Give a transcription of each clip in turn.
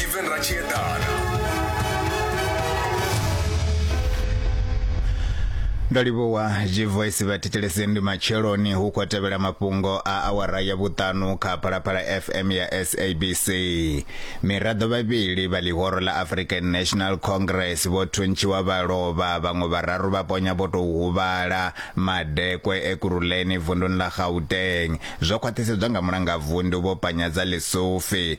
Steven Rachiedana. ndo livhuwa zwivoisi vhathetshelesi ndi matsheloni hu khou tevhela mafhungo a awara ya vhuṱanu kha phalaphala fm ya sabc miraḓo vhavhili vha ḽihoro ḽa african national congress vho thuntshiwa vha lovha vhaṅwe vhararu vha ponya vho tou huvhala madekwe e kuruleni vunduni ḽa gauteng zwo khwaṱhisedzwa nga mulangavundu vho panyadza ḽisufi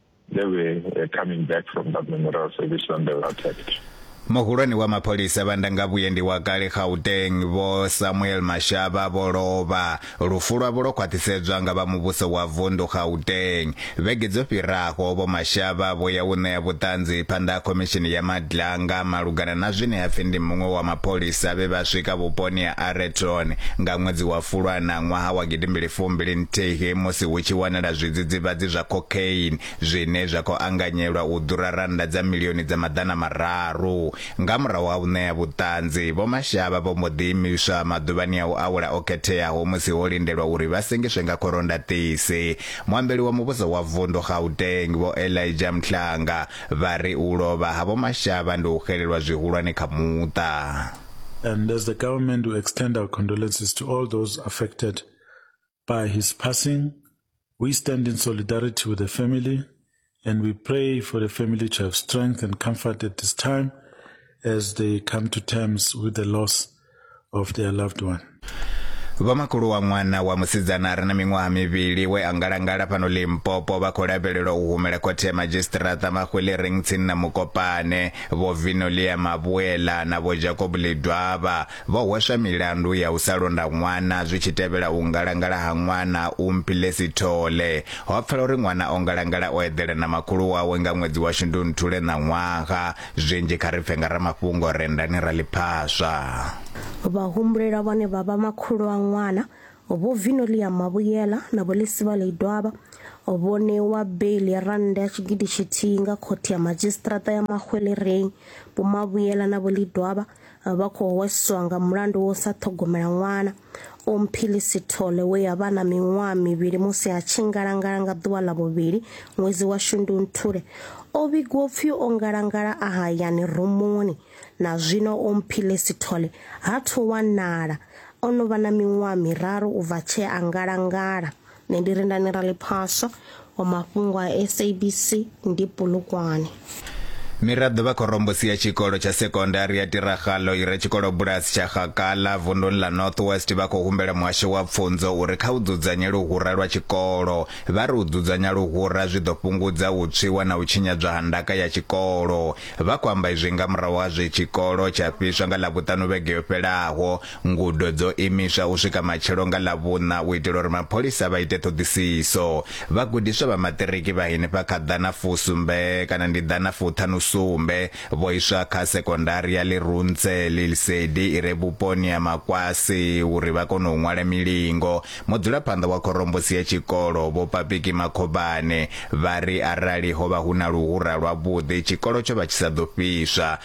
They were uh, coming back from that memorial service when they were attacked. muhulwane wa mapholisa vha ndangavhuyendi wa kale gauteng vho samuel mashaba vho lovha lufu lwavho lwo khwaṱhisedzwa nga vha muvhuso wa vundu gauteng vhege dzo fhiraho vho mashaba vho ya u ṋea vhuṱanzi phanḓa ha khomishini ya madlanga malugana na zwine ha pfi ndi muṅwe wa mapholisa vhe vha swika vhuponi ha areton nga ṅwedzi wa fulwana ṅwaha wa gidimbili fumbili nthihi musi hu tshi wanala zwidzidzivhadzi zwa cocaine, zwine zwa khou anganyelwa u ḓura rannda dza milioni dza maḓana mararu. Nga murahu ha u ṋea vhuṱanzi, Vho Mashaba vho mbo ḓi imiswa maḓuvhani a u awela o khetheaho musi ho lindelwa uri vha sengiswe nga khorondhaṱisi. Muambeli wa muvhuso wa vundu Gauteng, Vho Elijah Mhlanga, vha ri u lovha ha Vho Mashaba ndi u xelelwa zwihulwane kha muṱa. And as the government we extend our condolences to all those affected by his passing. We stand in solidarity with the family and we pray for the family to have strength and comfort at this time as they come to terms with the loss of their loved one. vhomakhulu wa ṅwana wa musidzana a re na miṅwaha mivhili we a ngalangala fhano limpopo vha khou lavhelelwa u humela khothe ya madzhisiṱiraṱa mahwelering tsini na mukopane vho vinolia mavhuela na vho jacob ledwaba Vho hweswa milandu ya u sa londa ṅwana zwi tshi tevhela u ngalangala ha ṅwana u Mpile Sithole. Ho pfala uri ṅwana o ngalangala o eḓela na makhulu wawe nga ṅwedzi wa Shundunthule ṋaṅwaha. Zwinzhi kha ri pfe nga ramafhungo rendani ra ḽi phaswa. Vhahumbulela vhane vha vha makhulu a ṅwana, Vho Vinolia Mabuyela na Vho Lisivale Idwaba, vho ṋewa beiḽi ya rannda ya tshigidi tshithihi nga Khothe ya Madzhisiṱiraṱa ya Mahwelereng. Vho Mabuyela na Vho Lidwaba vha khou hweswa nga mulandu wo sa ṱhogomela ṅwana omphili sithole we ya vha na miṅwaha mivhili musi a tshi ngalangala nga ḓuvha ḽa vhuvhili ṅwedzi wa shundunthule o vhigwa upfi o ngalangala a hayani rumuni na zwino omphile sithole ha thu wanala o no vha na miṅwaha miraru u bva tshee a ngalangala nṋe ndi rindani ra ḽiphaswa wa mafhungo a sabc ndi pulukwane Miraḓo vha khorombusi ya tshikolo tsha sekondari ya Tiragalo i re tshikolobulasi tsha Gakala vunduni ḽa North West vha khou humbela muhasho wa pfunzo uri kha u dzudzanye luhura lwa tshikolo. Vha ri u dzudzanya luhura zwi ḓo fhungudza u tswiwa na u tshinyadzwa ha ndaka ya tshikolo. Vha khou amba izwi nga murahu ha zwe tshikolo tsha fhiswa nga Ḽavhuṱanu vhege yo fhelaho. Ngudo dzo imiswa u swika matshelo nga Ḽavhuṋa u itela uri mapholisa vha ite ṱhoḓisiso. Vhagudiswa vha maṱiriki vha henefha kha ḓana fusumbe kana ndi ḓana fuṱhanu sumbe vho iswa kha sekondari ya Leruntshe le Lesedi i re vhuponi ha Makwasi uri vha kone u ṅwala milingo. Mudzulaphanḓa wa khorombusi ya tshikolo, Vho Papiki Makhobane, vha ri arali ho vha hu na luhura lwavhuḓi tshikolo tsho vha tshi sa ḓo fhiswa.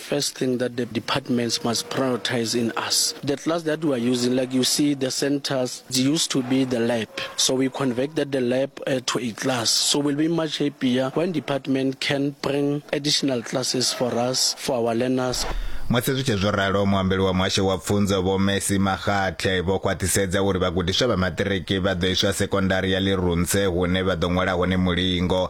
First thing that the departments must prioritize in us. The class that we are using, like you see, the centers used to be the lab. So we converted the lab uh, to a class. So we'll be much happier when department can bring additional classes for us, for our learners. musi zwi tshi zwo ralo muambeli wa muhasho wa pfunzo vho messi magathe vho khwaṱhisedza uri vhagudiswa vha maṱiriki vha ḓo iswa sekondari ya lirunse hune vha ḓo ṅwala hone mulingo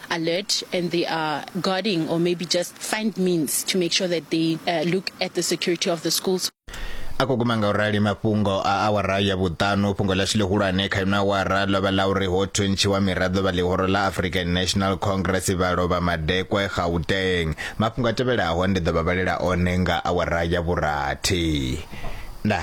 alert and they are guarding or maybe just find means to make sure that they uh, look at the security of the schools. a khou guma nga u rali mafhungo a awara ya vhuṱanu fhungo ḽashu ḽihulwane kha ino awara ḽo vha ḽa uri ho thuntshiwa miraḓo vha ḽihoro ḽa african national congress vha lovha madekwe gauteng mafhungo a tevhelaho ndi ḓo vha vhalela one nga awara ya vhurathi nda